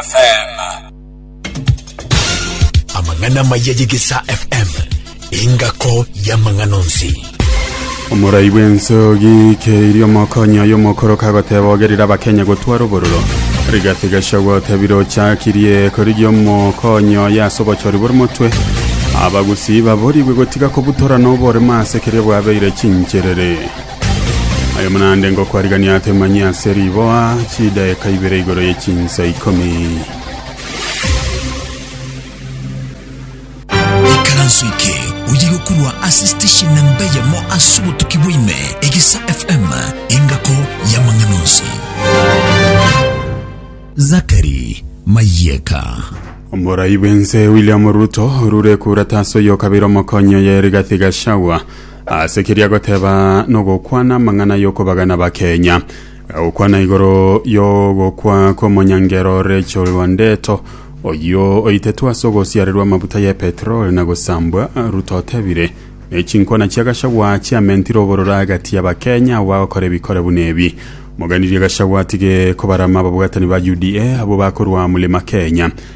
FM. Amang'ana amaya y'Egesaa FM, engako y'amang'ana onsi. omorai bw'ense ogikeirie omokonyi oyo omokoro kagoteba ogerire abakenya gotwara obororo rigati gachagua otebire ochakirie korigia omokonyi oyo ase obochori bore motwe abagusii baborigwe gotiga kobutorana oboremo ase keria bwabeire chincherere Aye mnaende ngokwarigania ake manyia ase riboa chidaeka ibere igoro ye chinsa ikomi. Ikaranso eke oye gokurwa ase station namba eyemo ase obotuki bwaime egesa FM engako y'amang'ana onsi. Zakari Mayeka. Omorai bw'ense William Ruto orure kura tase oyo kabere omokonyi oye Rigathi Gachagua Ase keria goteba nogokwana amang'ana y'okobagana bakenya, gagokwana igoro y'ogokwa kw'omonyangero Rachel Wandeto oyio oitetwe ase ogosiarerwa amabuta ye petrol na gosambwa Ruto otebire nechinkwana chia Gachagua chiamentire obororo agati ya bakenya abo bagokora ebikore buna ebi. Moganirie Gachagua atige kobarama ababwatani ba UDA abwo bakorwa Mulima Kenya.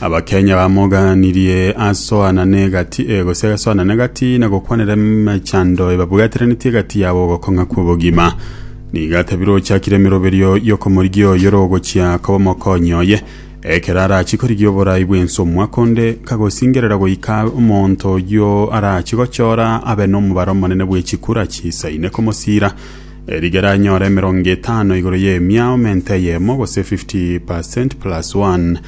Abakenya bamogaanirie asoanane egati e gose asoanane egati na gokwanera emechando ebabwateranetie egati yabo ogokong'a kw'obogima. Nigo atabire ochakire emeroberio y'okomorigia oyo ore ogochia koba omokonyi oye, ekero arachie korigia oborai bw'ense omwaka onde, kagosingerera goika omonto oyio arachie gochora abe nomobaro omonene bwe chikura chiisaine komosiira, e rigere anyore emerongo etano igoro y'emiao mente eyemo gose 50 per cent plus one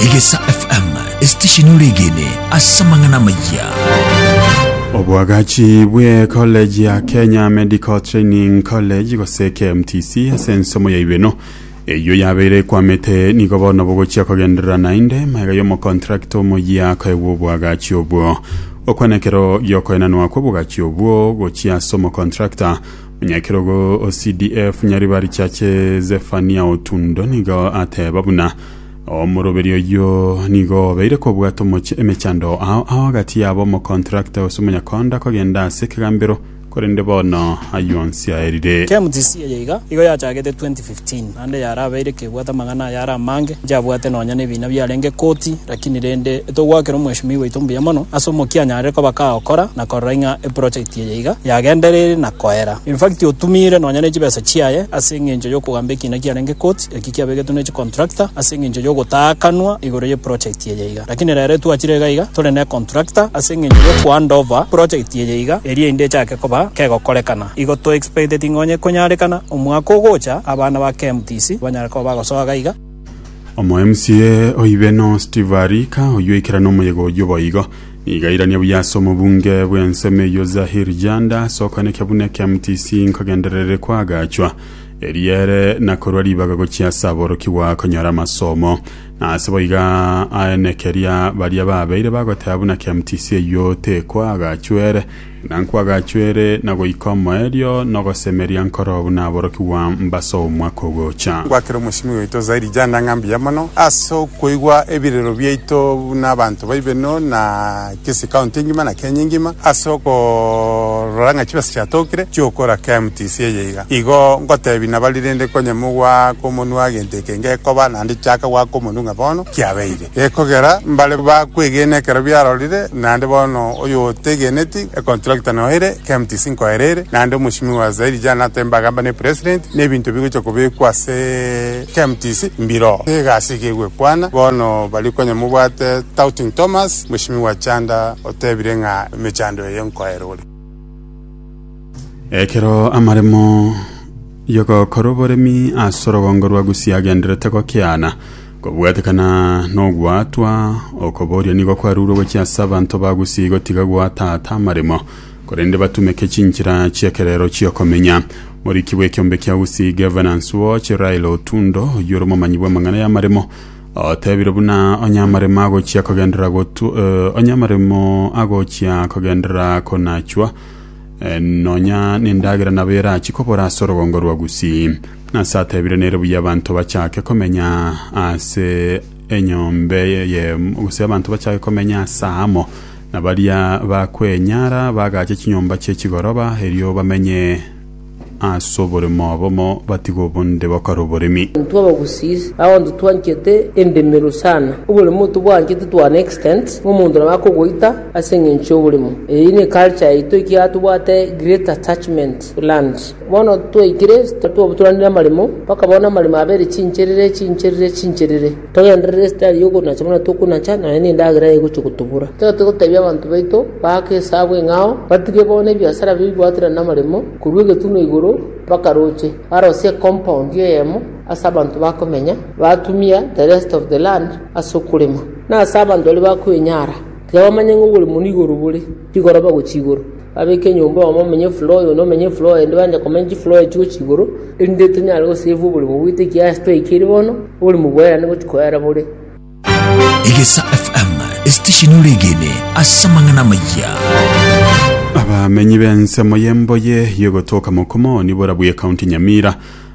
Egesa FM, esitesheni ore egene ase amang'ana amaya. Obwagachi bwe college ya Kenya Medical Training College gose KMTC ase ensomo yaibwe eno eyio yabeire ekwamete nigo bono bogochia kogenderera naende maega y'omokontrakta omoyia akoegwa obwagachi obwo okwana ekero giokoenanwa kw'obwagachi obwo gochia ase omokontrakta Omunyakerogo o CDF Nyaribari Chache Zefania Otundo nigo ateba buna omoroberi oyio nigo obeire kobwata omoche emechando ao ao agati yabo omokontrakta ose omonyakonda kogenda ase ekegambero korende bono ayio onsi aerire. KMTC eye iga igo yachagete 2015. Tin. Naende yarabeire kebwate amang'ana aya are amange, inche abwate nonya nebiina biarenge koti, lakini rende etogoakera omweshimiwa oito mbuya mono ase omokia anyarire koba kagokora na korora ing'a eprojekti eye iga yagendereire na koera. Infact otumiire nonya nechibesa chiaye ase engencho yokogamba ekiina kiarenge koti, eki kiabegetwe ne chicontractor ase engencho yogotaakanwa igoro y'eprojekti eye iga. Lakini rero etwachire iga iga tore necontractor ase engencho yokohandover project eye iga erio inde echake koba kegokorekana. Igo to expecteti ng'a onye konyarekana omwaka ogocha abana ba KMTC banyare koba bagosoa gaiga. Omo MCA oibe no Steve Arika oyio oikerane omoyega oyio boigo. Nigo airanie buya ase omobunge bw'ensemo eyio Zahir Janda ase okoenekia buna KMTC nkogendererire koagachwa eriere na korua ribaga gochia ase aborokigwa konyora amasomo. Nase boiga aene keria baria babeire bagoteba buna KMTC eyio tekoagachwa ere Na nkwagachwere na goika omoerio na ogosemeria nkoro buna aborokigwa mb'ase omwaka ogocha. Gwakera omosingi oito Zaidi Janda ng'a mbuya mono ase okoigwa ebirero biaito buna abanto baibeno na Kisii County engima na Kenya engima ase okorora ng'a chibesa chiatokire chiokora KMTC eye iga. Igo ngotebi nabari rende konye mogwake omonwa gento eke ngekoba nande chaka gwaka omonu ng'a bono kiabeire. Gekogera mbare bakwegene ekero biarorire, naende bono oyotegeneti econtractor noyo ere KMTC nkoera ere, naende omochimi wa zaidi jana atembe agamba ne president, na ebinto bigocha kobekwa ase KMTC mbiro egasi iga egwekwana, bono baria konya mobwate Touting Thomas, mochimi wa Chanda otebire ng'a emechando eye nkoera ore. Ekero amaremo y'ogokora oboremi ase orogongo rwa Gusii agendererete gokiana, Kobwatekana n'ogwaatwa, okobooria nigo kwarurwe gochia ase abanto ba Gusii gotiga goataata amaremo, korende batumeke chinchera chi'ekerero chi'okomenya. Moriki bw'ekiombe kia Gusii Governance Watch, Raila Otundo, oyio ore omomanyi bw'amang'ana y'amaremo, otebire buna onye amaremo agochia kogenderera gotu- eh, onye amaremo agochia kogenderera konachwa, Nonya nendagera nabo erachi kobora ase orogongo rwa Gusii. Nase atebire nere buya abanto bachake komenya ase enyombe ye gose abanto bachake komenya ase amo na baria bakwenyara bagache chinyomba chie chigoroba erio bamenye As'oboremo obomo batiga obonde bakore oboremi. Intwe abagusii nabontwe twanchete endemero sana, oboremo tobwanchete to an extent ng'a omonto nabo akogoita ase eng'encho y'oboremo. Eyio ne culture yaito ekiagera tobwate great attachment to land. Bono twaikire twabaturanire amaremo mpaka bono amaremo abere chincherere chincherere chincherere. Togenderere esitari y'okonacha buna tokonacha, nonya nendagera egochia gotobura. Tiga togotebia abanto baito baake esabu eng'ao, batige bono ebiasara bibwaterane namaremo, korwa egetunwa igoro mpaka roche, barosie ecompound eyemo ase abanto bakomenya, batumia the rest of the land ase okorema, na ase abanto baria bakwenyara, tiga bamanye ng'a oborimo nigo orobore. Igoro bagochia igoro, babeke enyomba oyomo omenye floor oyonde omenye floor oyonde banche komenya chifloor echio gochia igoro, erinde tonyare gosave oborimo bwaito ekiasi twaikire bono, oborimo bwerane gochia koera bore. Egesa FM, esitesheni oregene ase amang'ana amayia. Abamenyi b'ensemo y'emboye y'ogotoka Mokomo nibora bw'e County Nyamira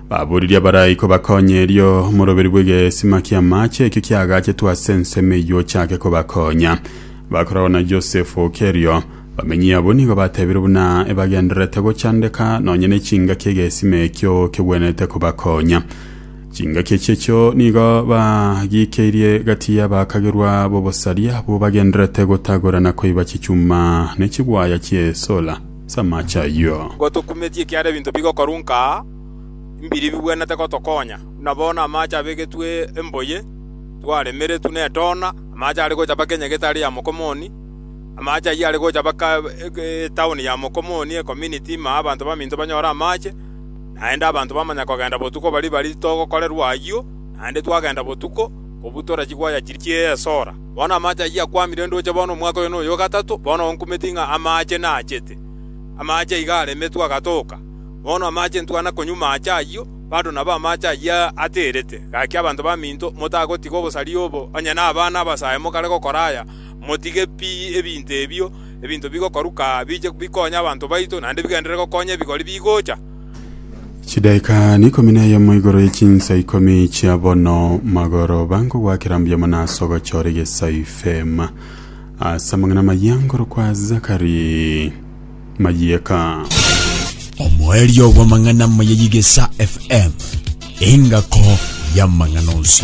baboririe abaraiko bakonye erio omoroberi bw'egesima ki'amaache ekio kiagachetwe ase ensemo eyio ochake kobakonya. Bakorora Yosefu oke erio, bamenyi abwo nigo batebire buna ebagendererete gochandeka nonya nechingaki egesima ekio kegwenerete kobakonya. Chingaki echi echio nigo bagikeirie gati y'abaakagerwa b'obosaria abwo bagendererete gotagora na koiba chichuma ne chigwaya chi'esola chi'amaache ayio. Nigo tokumetie ekiagera ebinto bigokorunka aa mbiri bigwenerete gotokonya, buna bono amaache abegetwe emboye, twaremeretwe netoona, Amaache are gocha mpaka enyaga etari ya mokomoni. Amaache ayio are gocha mpaka etaoni ya mokomoni, ecominiti, ime abanto baminto banyore amaache. Naende abanto bamanya kogenda botuko baria bari togokorerwa ayio, naende twagenda botuko, kobua tore chigwaya chiria chie esora. Bono amaache ayio akwamire ndoche bono omwaka oyo noyo o gatato bono onkumeti ng'a amaache naachete. Amaache iga aremetwe agatoka. Bono amaache ntwana konywa maache ayio. Bado nabo amaache ayio ateerete. Gaki abanto baminto, motagotiga obosaria obo, onye nabana abasae mokare gokora aya. Motige pi ebinto ebio, ebinto bigokoruka aa biche bikonye abanto baito, naende bigenderere gokonya ebigori bigocha. Chidaika n'ikomi na eyemo igoro ye chinsa ikomi chia bono magoroba nkogwakera mbuya mono ase ogochora egesaifeema ase amang'ana amayia nkorokwa Zakari. mayieka. Omoerio bw'amang'ana amaya y'Egesa FM, engako y'amang'ana onsi.